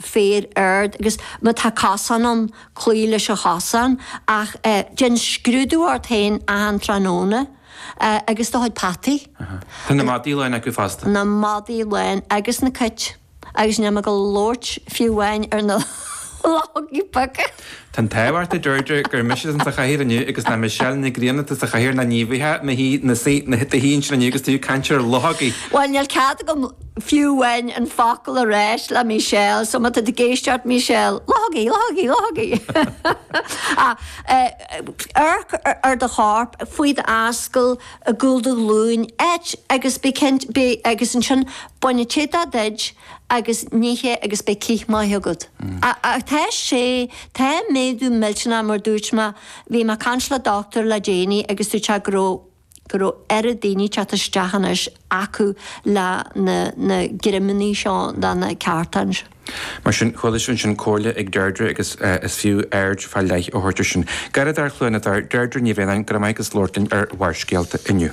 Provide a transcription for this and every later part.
féar ard agus má tá casán ann, cloígh leis an chasán ach déan scrúdú ort féin achan tráthnóna agus do chuid peataí. Tá na madaí lán acu fosta. Na madaí lán agus na cait agus níl mé ag labhairt fiú amháin ar na luchógaí beaga! Tá an t-ádh ort a Deirdre gur mise atá sa chathaoir inniu agus nach Michelle Nic Grianna atá sa chathaoir nó ní bheifeá i do shuí ansin inniu agus tú ag caint ar luchógaí. Bhuel, níl cead agam fiú amháin an focal a rá le Michelle, so má tá tú ag éisteacht Michelle, luchógaí, luchógaí, luchógaí! Amharc ar do chorp, faoi d'ascaill, i gcúl do ghlúin, áit agus bí cinnte, bí, agus ansin bain an t-éadach díot, agus nigh é agus bíodh cith maith agat. Ach tá sé, tá méadú millteanach mar dúirt mé, bhí mé ag caint le doctúir le déanaí agus dúirt sé go raibh, go raibh oiread daoine teacht isteach anois acu le na, na greimeannaí seo do na ceartáin. Mar sin, chuala sibh ansin comhairle ag Deirdre agus is fiú aird fá leith a thabhairt ar sin. Garraíodóir Chluain na dTor, Deirdre Ní Bhraonáin, go raibh maith agat as labhairt linn ar Bharrscéalta inniu.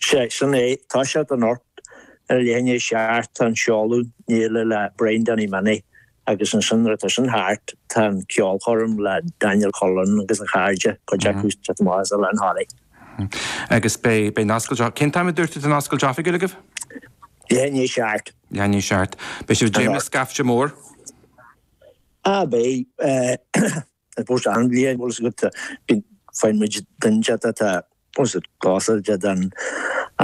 Sea, sin é, tá sé anocht. Ar leath i ndiaidh a seacht tá an seoladh an fhéile le Brian Danny Minnie agus ansin nuair atá sin thart tá an ceolchoirm le Daniel Cullen agus a chairde, cuid acu sa Tomas eile, an Holly. Agus beidh, beidh an oscailt oifigiúil, cén t-am a dúirt tú atá an oscailt oifigiúil agaibh? Leath i ndiaidh a seacht. Leath i ndiaidh a seacht. Beidh sibh ag dréim le scaifte mór? Á beidh. I suppose achan bhliain bhfuil a fhios agat bíonn feidhmid den chat atá os a gcás ar fhad an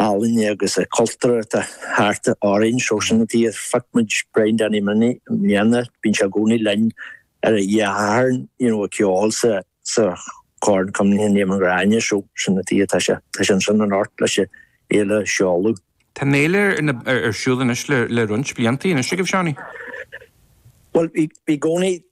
ealaíne agus a cultúr atá thart orainn so sin an tuighe a phioc muid Brian Danny Minnie i mbliana bíonn sé i gcónaí linn ar an tSatharn you know ag ceol sa sa Corn Cuimhne Éamoinn Ghráinne so sin an tuighe atá sé tá sé ansin anocht leis an fhéile a sheoladh. Tá an fhéile ar na ar siúl anois le le roinnt blianta anois agaibh Seánie? Bhuel bhí bhí gcónaí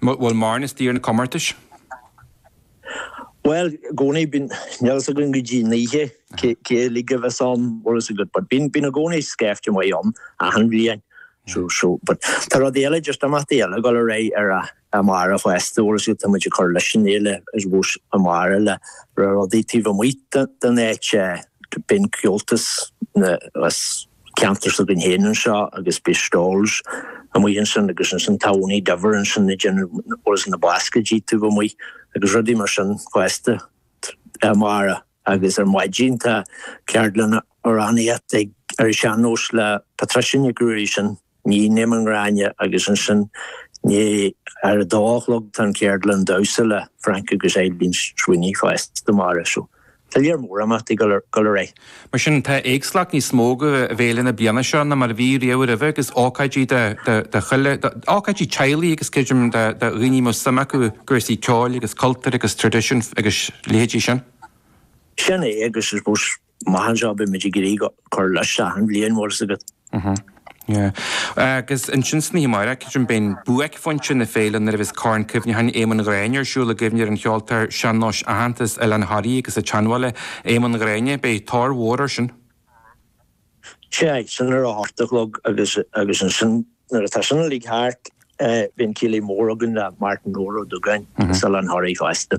Bhfuil mórán istigh ar na comórtais? Bhuel, i gcónaí bíonn, níl a fhios againn go dtí an oíche cé uilig a bheas ann, bhfuil a fhios agat, but bíonn, bíonn i gcónaí scaifte maith ann achan bhliain, so, so, but tá rud eile, just imeachtaí eile ag dul ar aghaidh ar a, amárach fosta, bhfuil a fhios agat, tá muid ag cur leis an fhéile I suppose amárach le rudaí taobh amuigh den, den áit, bíonn Comhaltas na, as. ceantar s'againn féin anseo agus beidh stalls amuigh ansin agus ansin tá Ownie Diver ansin ag déanamh whereas na bascaeidí taobh amuigh agus rudaí mar sin fosta amárach agus ar maidin tá ceardlanna amhránaíochta ag ar an sean-nós le Patricia Nic Ruairí sin Níon Éamonn Ghráinne agus ansin ní ar a dó a chlog tá an Cheardlann Damhsa le Frank agus Eileen Sweeney fosta mar, so tá lear mór imeachtaí go léir. Mar sin, tá éagsúlacht níos mó i bhféile na bliana seo ná mar a bhí riamh roimhe agus ócáidí do chuile, ócáidí teaghlaigh agus creidim do dhaoine a mbeadh suim acu i gcúrsaí ceoil agus cultúir agus tradisiún agus leithéidí sin. Sin é agus I suppose Maith anseo beimid ag iarraidh cur isteach an bhliain mhór is agat. Yeah. Agus ansin san oíche amárach, ansin beidh buaicphointe na féile nuair a bheas Corn Cuimhneacháin Éamonn Ghráinne ar siúl i gcuimhne ar an cheoltóir sean-nóis aitheanta as Oileán Thoraí agus an tSeanbhaile, Éamonn Ghráinne. Beidh tóir mhór air sin. Sea, sin ar a hocht a chlog agus agus ansin nuair atá sin uilig thart, bíonn céilí mór againn le Martin Duggan as Oileán Thoraí fosta.